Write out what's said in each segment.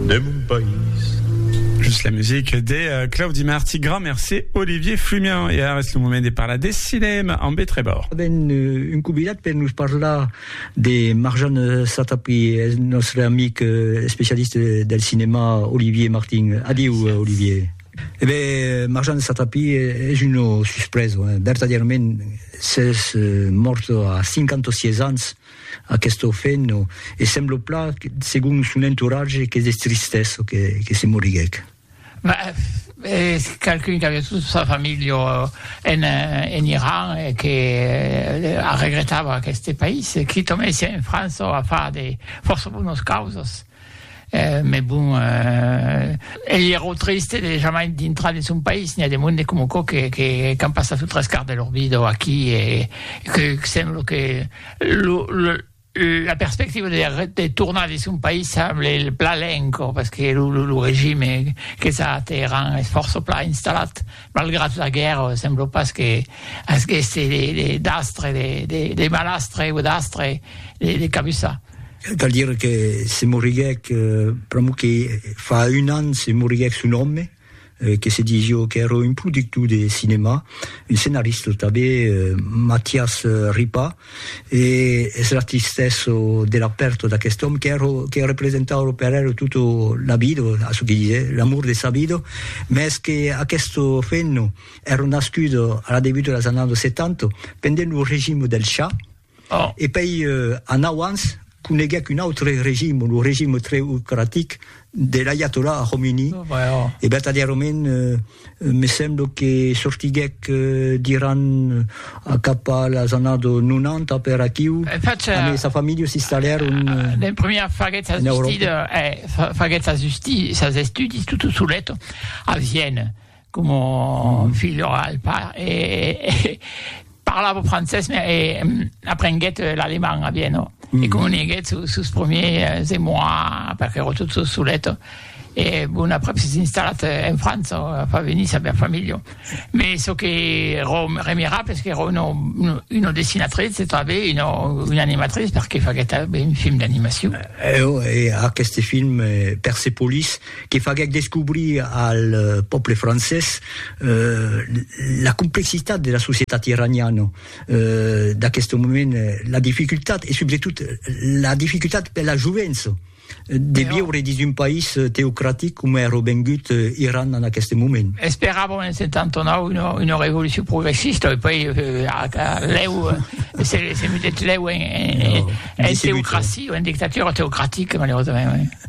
de mon país. Just la musique de Claudi Marty, grand merci Olivier Flumian. E ara es lo moment de parlar de cinèma amb E. Trèbor. Avèm un convidat per nos parlar de Marjan Satapi, es nòstre amic especialista del cinèma Olivier Martin. Adieu Olivier. E ben Marjan Satapi es una suspresa, vertadièrament s'es mòrt a 56 ans. Aquest orfen no e semblo plat, segon son entoratge, qu'es de tristessa que se moriguèc. Es qualqu'un qu'aviá tota sa familha en Iran e que arregretava aqueste país, quitament siá en França o a far de fòrça bonas causas. Mes bon, ei ierò triste de jamai dintrar de son país, n'i a de monde com aquò que qu'an passat lo tres quart de lor vida aquí e que sembla que lo la perspectiva de tornar de son país semble plan lent encò, parce que lo regime que s'a a Teheran es fòrça plan installat, malgrat la guèrra sembla pas que agueste d'astre, de malastre o d'astre de cabussar. Cal dire que se moriguèc, pr'amor que fa un an se moriguèc son òme, que se disió qu'èra un productor de cinèma, un scenarista tanben, Matias Ripa, e es la tristesa de la pèrta d'aquest òme qu'èra, que representava per era tota la vida, a çò que disè, l'amor de sa vida, mès que aquesta femna èra nascuda a la debuta dels annadas 70, pendent lo regime del Shah, E pei anau ans coneguec un autre regime, lo regime treocratic de l'aiatollah Khomeini, e vertadièrament me semblo que sortiguec d'Iran cap a las annados 90 per aquiu, amb sa familha s'installèron en Euròpa. Como filho al pa e parlava francés me e aprenguèt l'alemand a Viena e comuniguèt sus sus premiers émois perque ero tot sos solet e bon aprèp s'es installat en França fa venir sa bèl familha me çò que ero remirable es qu'ero una una dessinatrice e tanben una una animatrice perque faguèt tanben un film d'animacion. Eo e aqueste film Persepolis. que faguèc descobrir al pòble francés la complexitat de la societat iraniana d'aqueste moment, la dificultat e subretot la dificultat per la jovença de viure dins un país teocratic coma èra vengut Iran en aqueste moment. Esperàvem en 79 una revolucion progressista e puèi lèu se mudèt lèu en teocracia, en dictatura teocratica malaurosament.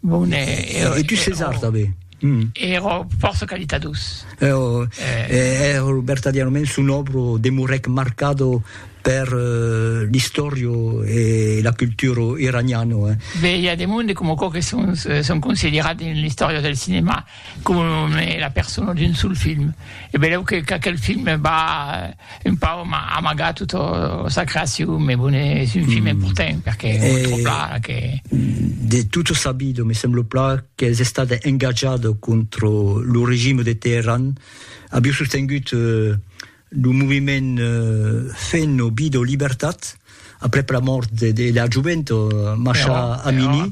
Bon, e, e, e tu ses art avé. Mm. Ero força qualitados. Ero, eh. ero vertadièrament son obro demorèc marcado per uh, l'istòrio e la cultura iraniana. Eh. Bé, i a de monde com aquò que son, son considerat en l'istòria del cinema. com e la persona d'un sol film e beleu que qu'aquel film va un pau amagar tota sa creacion me bon es un film important perque que de tot o sabido me semblo plan qu'es estat engatjado contro lo regime de Teheran aviu sostengut Lo moviment Fenn o Bid o Libertat, aprèp la mòrt de de la jovent Masha Amini,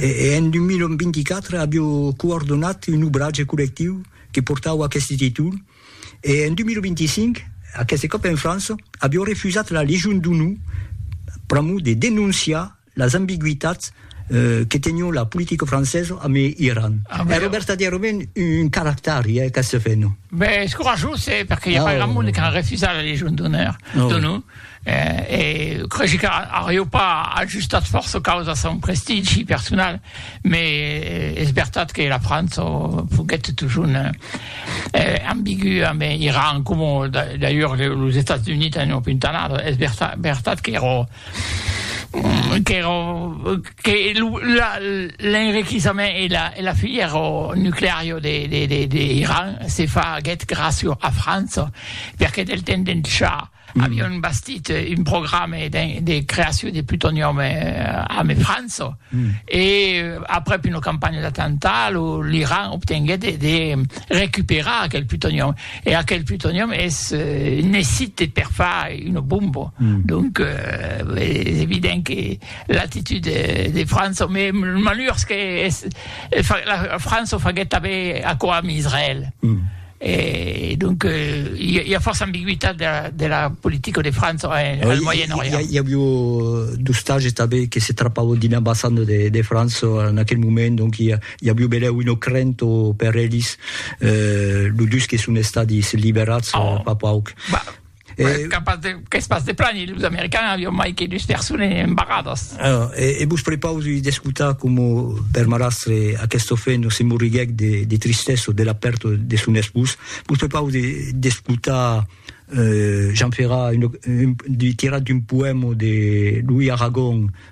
e en 2024 avió coordonat un obratge collectiu que portava aqueste títol, e en 2025, aqueste còp en França, avió refusat la Legion d'Onor pr'amor de denonciar Las ambigüitats que tenion la politica francesa amb Iran. Èra vertadièrament un caractari, eh, qu'ac feno. Ben, es corajós, eh, perque i a pas grand monde qu'a refusat la Légion d'Honneur d'ONU, eh, e cregi qu'arió pas ajustat fòrça caus a son prestigi personal, me es vertat que la França foguèt totjorn ambigü amb Iran, coma d'ailleurs los Estats Units an opuntanat, es vertat qu'èra qu'èra que lo la l'enriquissament e la e la filièr nucleario de de de de Iran se faguèt gràcio a França perque del temps d'en cha avion bastit un programe de de creacion de plutonium ame França e aprèp una campanha d'attentat lo l'Iran obtenguèt de de recuperar aquel plutonium E aquel plutonium es necite per far una bomba. Mm. Donc, euh, es evident que l'actitud de, de França, mais malheurs que es, la França faguet també aquò amb Israël. Mm. Et donc, il euh, y, a force ambiguïté de la, de la politique de France en, eh, oui, Moyen-Orient. Il y, a eu euh, du stage qui se trapavo d'une ambassade de, de France en aquel moment, donc il I a Biubelèu un ocrent o per elis, lo dus que son estadis liberats fa pauc. Qu'es pas de plan, los americans avion mai que dus persones embarradas. E vos prepausi d'escotar coma per marrastre aquest ofent se morriguèc de tristessa de la pèrta de son espós. Vos prepausi d'escotar Jean Ferrat tirat d'un poèma de Louis Aragon,